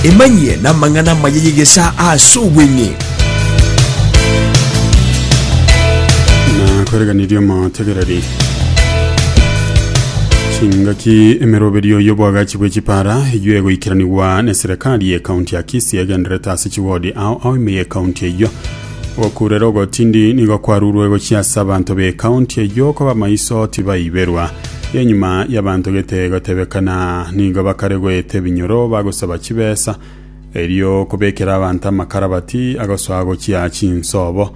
emanyie n'amang'ana amaya y'egesaa ase obweng'e nakwereganirie omotegereri chingaki emeroberio y'obwagachi bwe chipara eyio egoikeranigwa neserekari ye kaunti ya kisii egenderete ase chiwodi ao ao ime ye kaunti eyio Gokurera ogotindi nigo kwarurwe gochia ase abanto b'ekaunti eyio koba maiso tibaiberwa. Enyuma y'abanto gete gotebekana nigo bakare goeta ebinyoro bagosaba chibesa erio kobekera abanto amakarabati agosoa gochia chinsobo.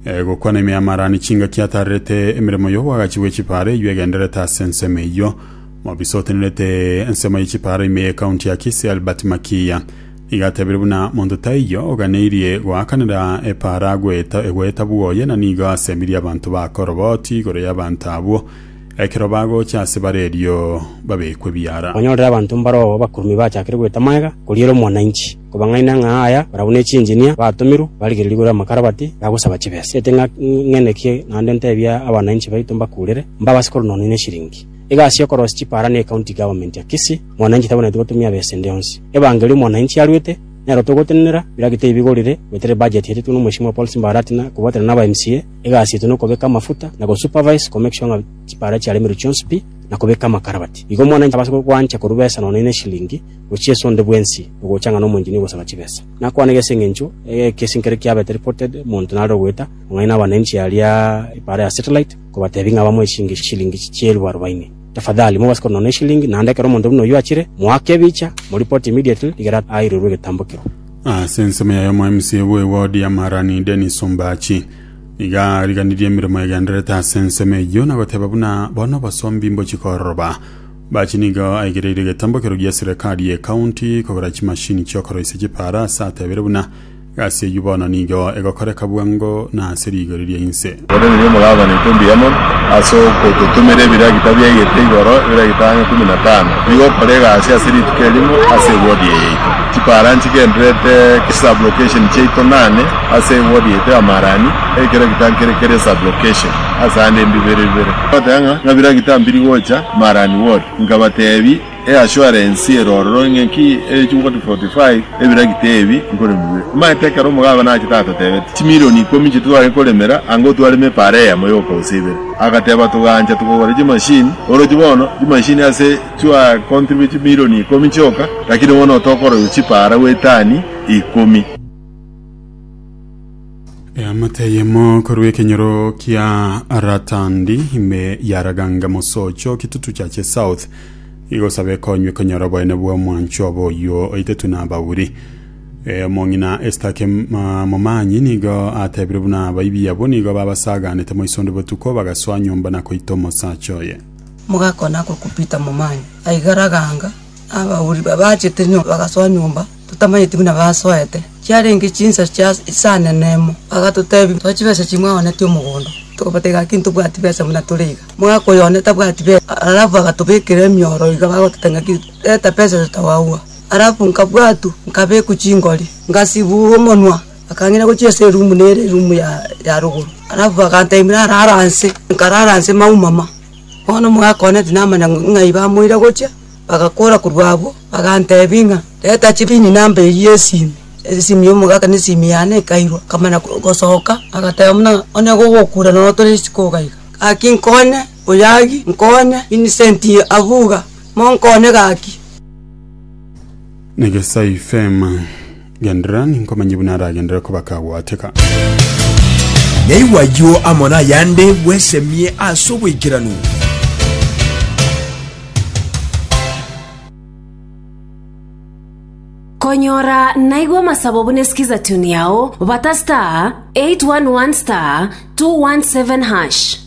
E, gokwana ime y'amarani chingaki atarerete emeremo y'obwagachi bwe chipara eyio egendererete ase ensemo eyio. Mobisa otenerete ensemo ye chipara ime y'ekaunti ya Kisii Albert Makiya Igatebire buna monto taiyo oganeirie goakanera epaara gweta egweta bwoye na nigo asemirie abanto ba koroboti igoro y'abanto abwo ekero bagocha ase bare erio babekwe biara. Kwanyorire abanto mbaroo abakurumi bachakire gweta magega koriera omwananchi, kobang'aina ng'a aya barabwo ne chinjinia batomirwe barigereri igoro y'amakarabati bagosaba chibesa. Ete ng'a ng'ende ki naende ntebie abananchi baito mbakurere, mbabase korwa nonye ne eshiringi. Egasi y'okorosia chipaara na ecounty government ya Kisii. Mwananchi tabonetie gotumia ab'esende onsi. Ebangeri omwananchi aruete, nero togotenenera, biragita ebi bigorire, goetera ebudget eetetwe n'omweshimiwa Paul Simba Arati na kobwatana naba MCA, egasi yaito nokobeka amafuta na go supervise komake sure ng'a chipara chiaremerwe chionsi pi na kobeka amakarabati. Igo omwananchi tabasa gwancha korwa besa nonya ine eshilingi gochia ase onde bwensi ogocha ng'a nomoenginia ogosaba chibesa. Nakwane gese eng'encho ekesi nkere kiabete reported monto nare ogoeta ong'aina abananchi aria ipara ya satellite kobatebia ng'a bamoe chingishilingi chielfu arobaini. Tafadhali mogase korwa nono eshilingi, naende ekero omonto buna oyio achire, moake ebicha, moripoti immediately rigere airorwe egetambo kerwa. Ase ensemo yaye omoMCA bw'ewodi ya Marani Dennis Ombachi nigo ariganirie emeremo egendererete ase ensemo eyio na goteba buna bono obosombi mbochikororoba. Ombachi nigo aigereire egetambo kerwa gia serekari ye county kogora chimashini chi'okoroisia chipaara ase atebire buna Egasi eyio bono nigo egokoreka bwango na ase rigori ria inse. Korende nigo mogakwana etumbi yamo ase ogototomera ebiragita bia egete igoro, ebiragita ang'e ikomi na tano, bigokora egasi ase rituko erimo ase ewodi eye yaito. Chipara nchigendererete chisublocation chiaito nane ase ewodi yaito ya Marani, ekiragita nkere kere sublocation ase ande mbibere bibere. Ngoteba ng'a, Ng'a biragita mbiri gocha Marani ward? Nkabatebi, Eassuarance ero ororo ng'enki ere chinguru 45 ebiragita ebi nkoremigwe. Omanyete ekero omogabe nachete atotebeti chimilioni ikomi inche titware koremera anga otwareme epara eyemo yoka gose ibere. Agateba togancha togogora chimachine orochi bono chimachine ase chua contribute chimilioni ikomi chioka lakini bono otokoroywa chipara gwetani ikomi. Eamate eyemo korwa ekenyoro kia Ratandi ime ya Raganga Mosocho Kitutu Chache South igosaba ekonywe konyora oboene bwa omwancho obo oyio oitetwe na abauri Eh, omong'ina Estake Ma- Momanyi nigo atebire buna abaibi abo nigo babasaganete moisondo botuko bagasoa nyomba na koita omosacha oye mogakona ko kupita momanyi aiga raganga abauri babachete nyomba bagasoa nyomba totamanyeti buna basoete, chiarenge chinsa chia isane nemo. Bagatotebia, Tore chibesa chimwaonetie omogondo. Tokabatebia, Gaki ntobwati besa buna tore iga. Mwaka oyo one tabwati besa. Alafu agatobekera emioro iga bagoteta ng'aki, Reta besa iso togagwa. Alafu nkabwatwa, nkabekwa chingori, ngasibugwa omonwa, bakang'ina gochia ase erumu nere erumu ya rogoro. Alafu bagantebia narare anse, nkarara anse maumama. Bono omogaka one tinamanya ng'ai bamoire gochia. Bagakwora korwa agwo, baganteebia ng'a, Reta chibini namba eyio esimi. Esimi y'omogaka na esimi yane ekairwa, nkamanya gosoka, agateba buna, Onye gogokura nonya tore isiko iga iga. Gaki nkonye, Oyagi, nkonye, Vincent Avuga, monkonye gaki. Nyagesai Fema. Genderera, ninkomanyie buna aragenderere ko bakagwateka. Naigwa ayio amo nayande bwesemie ase oboikeranu. Konyora naigwa amasabo buna esikiza tune yao, bata star 811 star 217 hash.